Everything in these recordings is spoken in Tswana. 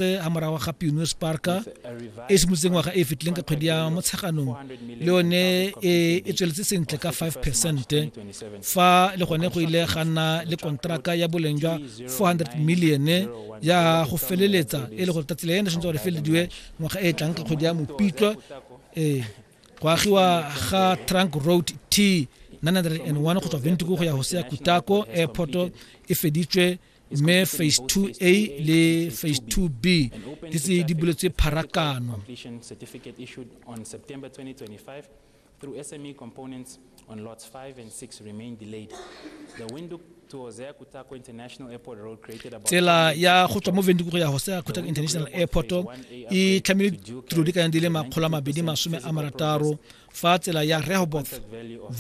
gape a morago ga pioneers parka e simolotseng ngwaga e fetileng ka kgwedi ya motsheganong le yone e, e tsweletse sentle ka 5 percent fa le gone go ile ga nna le kontraka ya boleng jwa 400 million ya go feleletsa e le gore tatsi le ene tshwanetse gore felediwe ngwaga e tlang ka kgwedi ya mopitlo ee go agiwa ga trunk road t 901 go tswa ventiko go ya hosea kutako airport e feditswe mme phase 2a le phase 2b di tse di buletswe pharakano through SME components on lots 5 and 6 remain delayed. The window to Hosea Kutako International Airport Road created about tsela ya go tswa mo Windhoek go ya Hosea Kutako International Airport e tlhamile tiro di kayang di le makgolo a mabedi masome a marataro fa tsela ya Rehoboth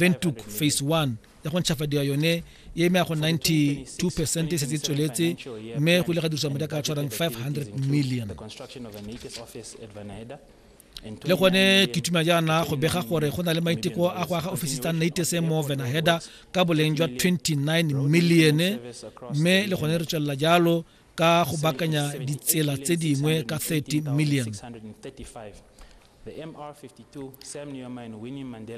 Windhoek phase 1 ya go ntšhafadiwa yone e eme ya go 92 percent e setse e tsweletse mme go ile ga dirisiwa madi a ka tshwarang 500 million le gone ke tumela jaana go bega gore go na le maiteko a go aga ofisi tsa naitese mo venaheda ka boleng jwa 29 millione mme le gone re tswelela jalo ka go bakanya ditsela tse dingwe ka 30 million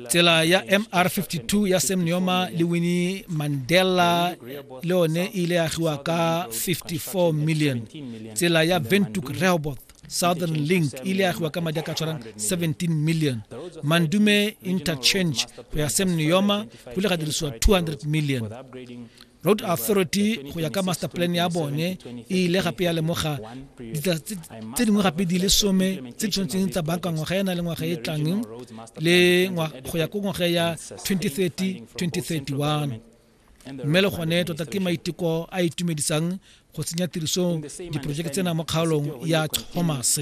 tsela ya mr52 ya sam neoma le winnie mandela le yone e ile ya agiwa ka 54 million tsela ya ventuk rehoboth southern link e ile ya agiwa ka madi a ka tshwarang 17 million mandume interchange go ya sam neoma go ile ga dirisiwa 200 million Road Authority go ya ka master plan ya bone e ile gape ya lemoga ditsela tse dingwe gape di le some tse di tshwanetseng tsa banka ngwaga ya na le ngwaga e tlang le go ya ko ngwaga ya 2030 2031 mme le gone tota ke maiteko a itumedisang go tsenya tirisong diporojeke tsena mo kgaolong ya thomas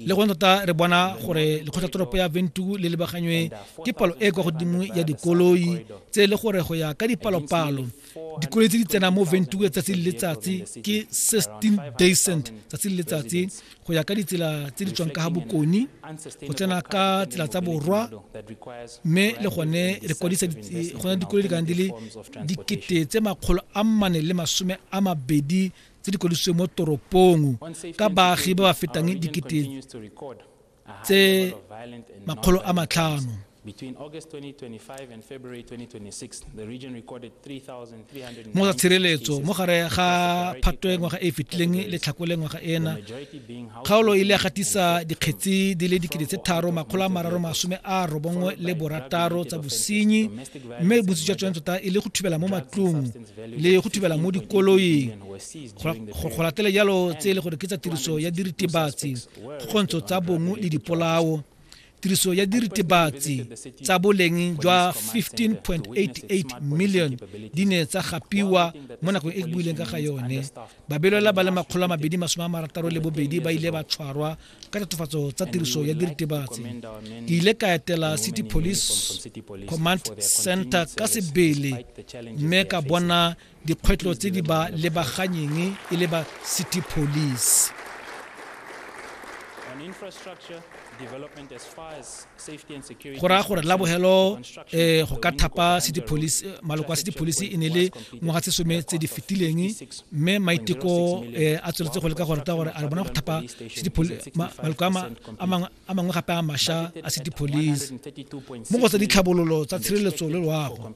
le gone tota re bona gore lekgotlatoropo ya ventu le lebaganywe ke palo e e kwa godimo ya dikoloi tse e le gore go ya ka dipalopalo dikoloi tse di tsenang mo ventu letsatsi le letsatsi ke 16 decent tsatsi le letsatsi go ya ka ditsela tse di tswang ka ga bokone go tsena ka tsela tsa borwa mme le gone re kwadisa gona dikolo di kana di le dikete tse makgolo a mmane le masome a mabedi tse di kwadisitswe mo toropong ka baagi ba ba fetang dikete tse makgolo a matlhano mo tsa tshireletso mo gare ga phatwe ngwaga e e fetileng le tlhakole ngwaga ena kgaolo e ile ya gatisa dikgetsi di le dikete tse tharo makgolo a mararo masome a robongwe le borataro tsa bosenyi mme bontsi jwa tsone tota e le go thubela mo matlong le go thubela mo dikoloing go latele jalo tse e le gore ke tsa tiriso ya diritibatsi kgontsho tsa bongwe le dipolao tiriso ya diritibatsi tsa boleng jwa 15.88 million di ne tsa gapiwa mo nakong e ke buileng ka ga yone babelwela ba le makgolo a mabedi masome a marataro le bobedi ba ile ba tshwarwa ka tatofatso tsa tiriso ya diritibatsi ke ile ka etela city police command center ka sebele mme ka bona dikgwetlho tse di ba lebaganyeng e le ba city police go raya gore la bogelo eh, go ka thapa city police eh, maloko a city police e ne le ngwaga tse some tse di fetileng mme maiteko eh, a tsweletse go leka gore ka gore a bona go thapa maloko a mangwe a mangwe gape a masha a city police mo go tsa ditlhabololo tsa tshireletso le loago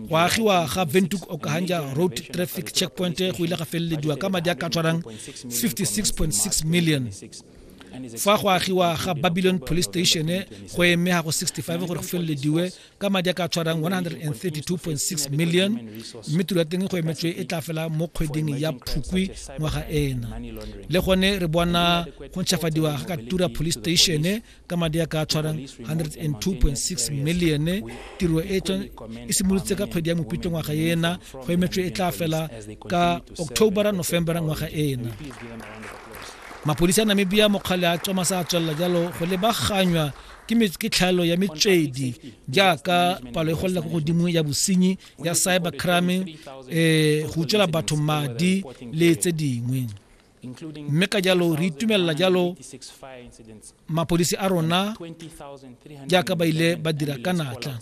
go agiwa ga ventuk okahanja road traffic checkpoint go ile ga felelediwa ka madi a ka tshwarang 56.6 million fa go agiwa ga babylon police station go eme go 65 gore go felelediwe ka madi a ka tshwarang 132.6 million mme tiro ya teng go emetswe e tla fela mo kgweding ya phukwi ngwaga ena le gone re bona go ntšhafadiwa ga katura police station ka madi a ka tshwarang 102.6 million tiro e e simolotse ka kgwedi ya mopitlo ngwaga ena go emetswe e tla fela ka october november ngwaga ena mapodisi a namibia mokgale a tsoma sa tswelela jalo go lebaganywa ke ke tlhaelo ya metswedi jaaka palo e golela ko godimo ya bosenyi ya cyber crime um eh, go utswela batho madi le tse dingwe mme ka jalo re itumelela jalo mapodisi a rona jaaka ba ile ba dira ka natla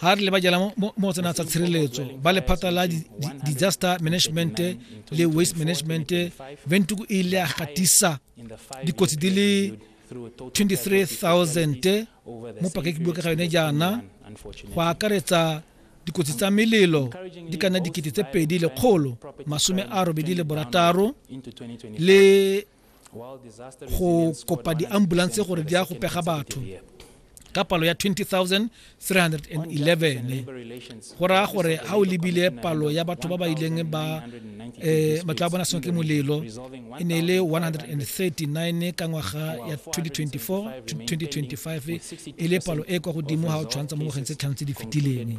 ga re lebajela mo go tsena tsa tshireletso ba lephata la disaster management le waste management ventuku e ile ya gatisa dikotsi di le 23000 mo pakekibue ka ga yone jaana go akaretsa dikotsi tsa melelo di ka nna dikete tse pedi lekgolo masome a robedi le borataro le go kopa di-ambulance gore di ya go pega batho ka palo ya 20311 go raya gore ga o lebile palo ya batho ba ba ileng ba eh, matlo a bona sengwe ke molelo e ne e le 139 ka ngwaga ya 2024 2025 e le palo e kwa godimo ga o tshwantsha mo ngwageng tse tlhano tse di fetileng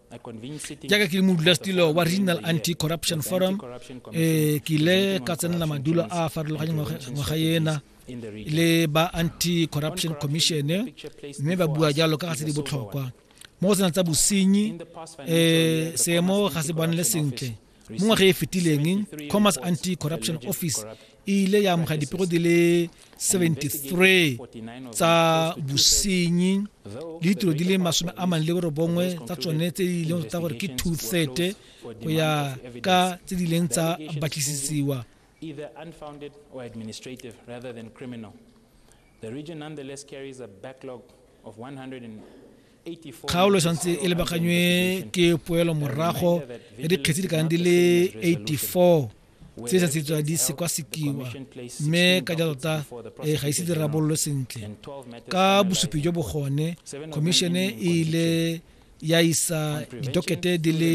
jaaka ke le modulasetilo wa regional anti corruption forum um ke ile ka tsenela madulo a a farologanye ngwaga ena le ba anti corruption commission mme ba bua jalo ka ga tse di botlhokwa mo go tsena tsa bosenyi um seemo ga se bonele sentle mo ngwaga e fetileng commerce anti corruption office e ile ya amoga dipego di le 73 tsa bosenyi le ditiro di le masome a mane le borobongwe tsa tsone tse di leng tsa gore ke two third go ya ka tse di leng tsa batlisisiwa either unfounded or administrative rather than criminal. The region nonetheless carries a backlog of 100 kgaolo santse e lebaganywe ke poelo morago ya dikgetsi di kanang di le 84 tse sa tsetswa di sekwasekiwa mme ka jalo ta e ga ise di rabololwe sentle ka bosupi jo bogone khomišene e ile ya isa ditokete di le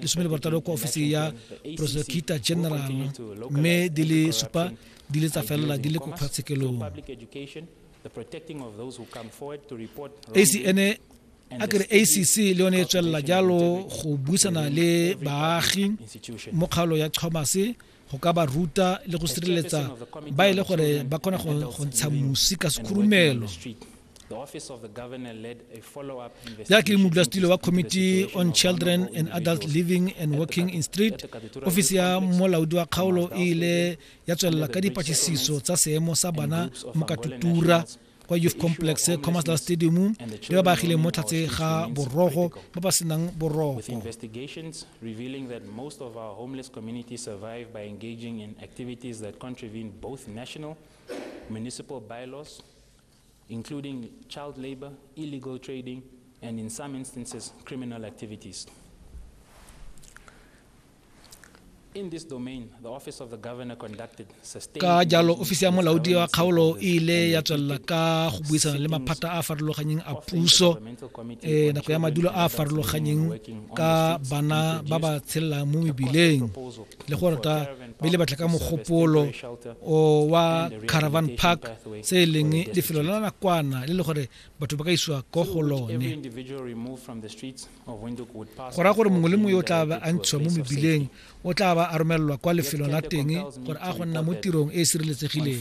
lesome le barataro kwa ofising ya prosecutor general mme di le supa di le tsa felela di le ko kgotlatshekelong ac ene a kere acc le yone e tswelela jalo go buisana le baagi mo kgaolo ya chomase go ka ba ruta le go sireletsa ba e le gore ba kgona go ntsha mosi ka sekhurumelo ya ke modulasetilo wa committee on children and adult living and working in street ofisi ya molaodi wa kgaolo e ile ya tswelela ka dipatlisiso tsa seemo sa bana mo katutura kwa youth complex commercial stadium le ba baagileng mo tlhatse ga borogo ba ba senang boroko municipal bylaws including child labor, illegal trading, and in some instances, criminal activities. ka jalo ofisi ya molaodi wa kgaolo e ile ya tswelela ka go buisana le maphata a a farologaneng a puso um nako ya madulo a a farologaneng ka bana ba ba tshelelang mo mebileng le go rata mme le batla ka mogopolo o wa caravan park se e leng lefelo la nakwana le le gore batho ba ka isiwa ko go lone go raya gore mongwe le mongwe yo o tla ba a ntshiwa mo mebileng o tla ba a romelelwa kwa lefelong la teng gore a go nna mo tirong e e sireletsegileng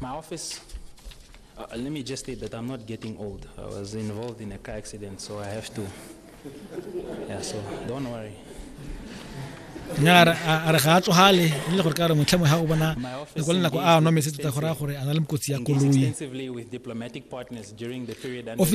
My office, uh, let me just state that I'm not getting old. I was involved in a car accident, so I have to. Yeah, so don't worry. nya re a a re ga a tsogale e le gore ka re motlhamo ga o bona My office le kwa lenako a engaged nwa metsi tota go raya gore a na le mokotsi ya extensively- koloi extensively with diplomatic partners during the period under Office